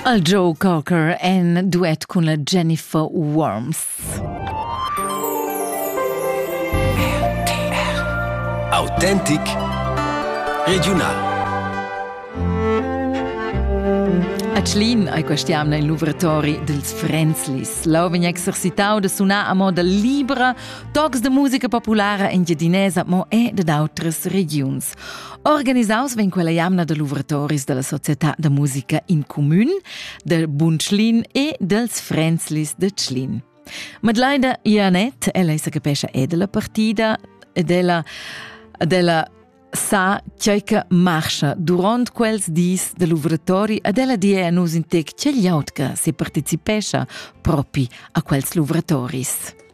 El Joe Cocker en duet cun la Jennifer Worms. Autentic Regional A Tschlin ei questa jamna il luvratori dils Frenzlis. Lau vegn exercitau da sunar a moda libra, tocs de musica populara engiadinesa, mo e dad outras regiuns. Organisaus vegn quella jamna da luvratoris dalla società da musica in cumün, del Bun Tschlin e dels Frenzlis de Tschlin. Madlaida Ianet, ella se capescha è della partida ed ella della sa chei che marcha durant quels dis de luvratori ad ella die a nus in tec che gliautca se partecipescha propi a quels luvratoris.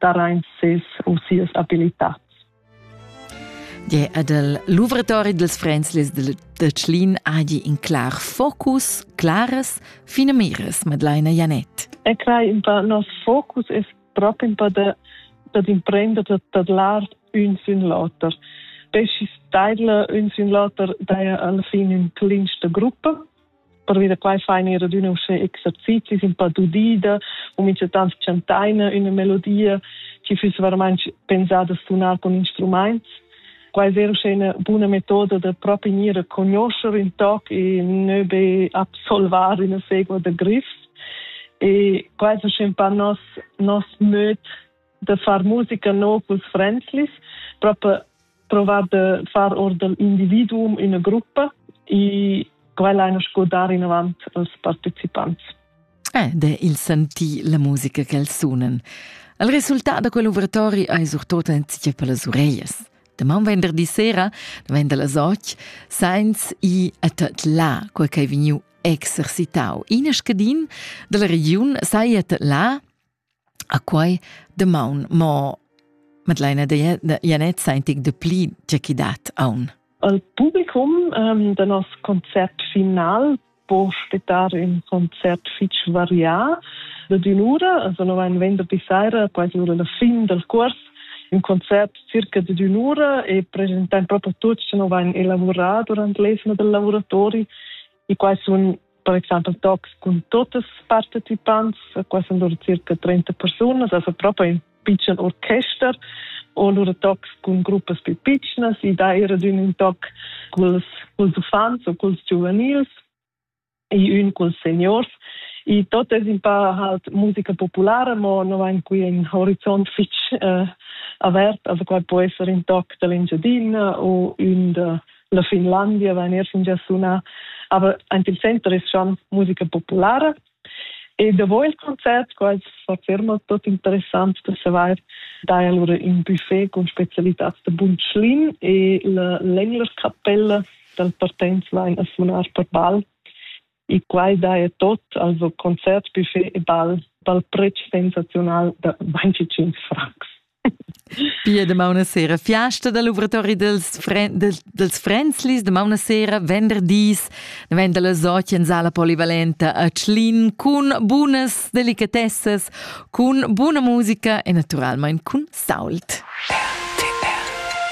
darain ses u sias abilitads. Gie ed el luvratori dels Fränzlis de, de Tschlin adi in clar focus, claras, fine mires, Madeleine Janet. E crai in pa nos focus es proprio in pa de dad imprender da tadlar un sin l'oter. Pesci staidla un sin l'oter daja alla fine in clinsta gruppa pervia da quai fa in era adüna uschè exercizis un pa d'udida u minchatant chantaina üna melodia chi füss veramaing pensada a sunar con instrumaints. Quai è uschè una buna metoda da proprio gnir a conoscere in toc e nö be absolvar una segua da grifs. E quai è uschè un pa nos, nos möd da far musica no culs frenzlis, proper provar de far or dell'individuum in gruppa e quella ein sco dar in avant als partecipants. Eh, de il senti la musica che els sunen. Il resultat da quell'overtori ei surtot enzia per las ureias. Deman venderdi sera, da vender las och, sainz i a tot la, quel che vegniu exercitau. In scadin della regiun sai a tot la A quai damaun mo Madeleina Janett saintic de pli tge chi dat aun. Al publicum ähm, da nos concert final può spettare un concert fitch varià da d'un'ura, also no ein venderdi saira, quasi ora la fin del cors, un concert circa di d'un'ura e presentan proprio tutti che no vain elavurà durante l'esno del lavoratori I qua sun per exempel tocs cun tuts partecipants, qua sun lura circa 30 persunas, also proprio in piccen orchester, o lura tocs cun gruppas più piccnas, i dà era un toc culs, culs uffants o culs giuvenils e ün culs seniors. I tot es un pa halt musica populara, ma no vain qui in horizont fich eh, avert, also qua può esser un toc dall'Engiadina o ün da la Finlandia vegnir fingia suna aber ant il center es schon musica populara e davo il concert qual fa ferma tot interessant da savar da allora in buffet con specialitats da Bunschlin e la Länglerkapelle dal Partenz vain a sunar per bal e quai daja tot, also concert, buffet e ball, dal pretsch sensaziunal da 25 francs. Pia damauna sera fiasta da lavoratori dels, fren, dels, dels Frenzlis, damauna sera venderdis, daventa la sotja in sala polivalenta a Tschlin cun bunas delicatessas, cun buna musica e naturalmain cun sault. RTR